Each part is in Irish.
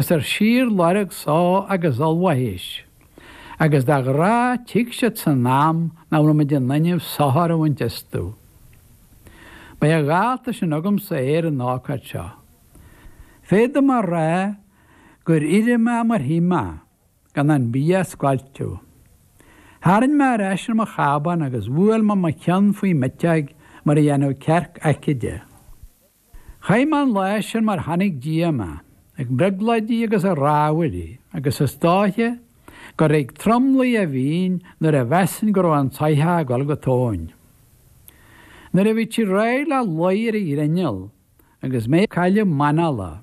Is ar síorlorg só agus ollmhaithis, agus de ghnáth tig siad san am nach bhfuilimid in inmhe sochar a bhaint astu. B'é a dhálta sin agamsa é ar an ócáid seo. Féadaim a rá gur éirigh mé mar shuigh mé, gan an bia a scoilteadh. Tharraing mé ar ais ar mo chábán agus bhuail mé mo cheann faoi m'eiteoig mar a dhéanfadh cearc aicíde. Chaith mé an lá sin mar tháinig díom, ag brionglóidí agus ag rámhaillí, agus is dóiche gur ag tromluí a bhínn nuair a mheasainn go raibh an tsoitheach ag dul go tóin. Nuair a bhí sí réidh le luí ar an ghrinneall, agus mé ag cailleadh m'anála,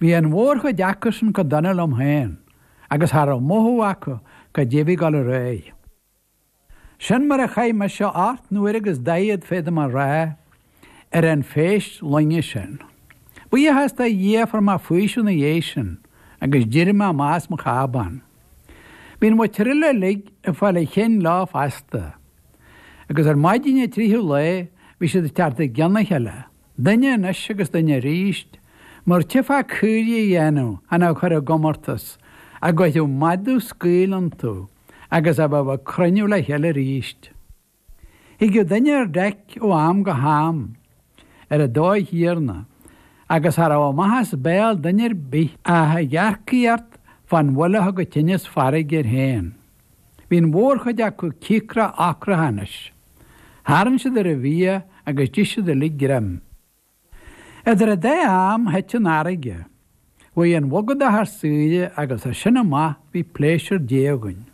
Bhí an mhórchuid acusan chomh dona liom féin agus cha raibh mothú acu goidé a bhí ag dul ar aghaidh. Sin mar a chaith mise ocht n-uaire agus daichead, féadaim a rá, ar an phéist loinge sin. Buíochas do Dhia fuair mé faoiseamh ina dhiaidh sin agus d'éirigh mé amach as mo chábán. Bhí an mhuintir eile uilig ag fáil an chinn leo feasta. Agus ar maidin an tríú lá bhí siad ag teacht i gcionn a chéile. Duine anois agus duine arís, mar a tchífeá caoirigh a dhéanamh chan á chur i gcomórtas, a gcuirfeadh madadh scaoll iontu agus a bheadh ag cruinniú le chéile arís. Thigeadh duine ar deic ó am go ham, ar an dóigh chéanna, agus cha raibh amach as béal duine ar bith ach ag eachtraí ort fán bhail a thug an tinneas farraige air féin. Bhí an mhórchuid acu cíocrach ocrach anois. Tharraing siad ar an bhia agus d'ith siad uilig greim. Idir an dá am, thit an fharraige. Bhí an bhogadach thar saoire agus as sin amach bhí pléisiúr Dé againn.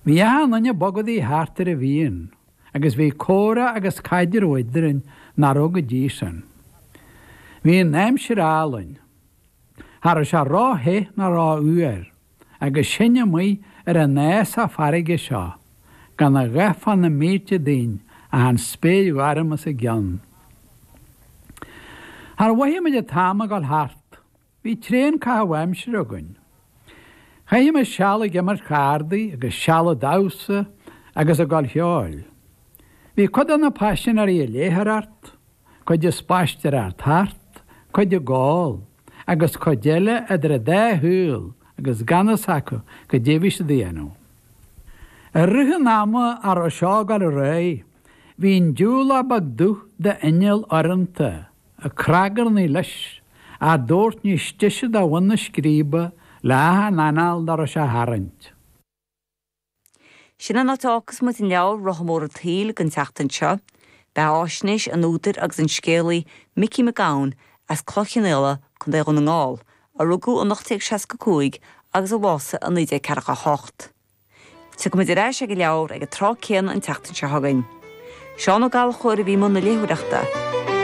Bhí achan duine ag bogadaigh thart ar a mhian agus bhí comhrá agus caidreamh eadrainn nach raibh go dtí sin. Bhí an aimsir álainn. Cha raibh sé ró-the ná ró-fhuar. agus sinn amuigh ar an fhásach farraige seo, gan a dhath fá na mílte dínn ach an spéir ghorm os ár gcionn. Char mhothaigh muid an t-am ag dul thart. Bhí tréan caitheamh aimsire againn. Chaith muid seal ag imirt chárdaí agus seal ag damhsa agus ag gabháil cheoil. Bhí cuid de na paisinéirí ag léitheoireacht, cuid ag spaisteoireacht thart, cuid ag ól, agus cuid eile idir a dá shúil agus gan fhios acu goidé a bhí siad a dhéanamh. I rith an ama a raibh seo ag dul ar aghaidh, bhí an diúlach beag dubh d'inneall urranta, ag cnagarnaí leis, ár dtabhairt níos deise do bhun na scríbe le hachan anáil dá raibh sé a tharraingt. Sin an áit a fhágfas muid an leabhar Rotha Mór an tSaoil don tseachtain seo. Ba é sin faisnéis an údair agus an scéalaí Micí Mac Gabhann as Cloich Cheann Fhaola, Co. Dhún na nGall, a rugadh in 1865 agus a bhásaigh i 1948. Tiocfaimid ar ais ag an leabhar ag an tráth céanna an tseachtain seo chugainn. Seán Ó Gallchóir a bhí i mbun na léitheoireachta.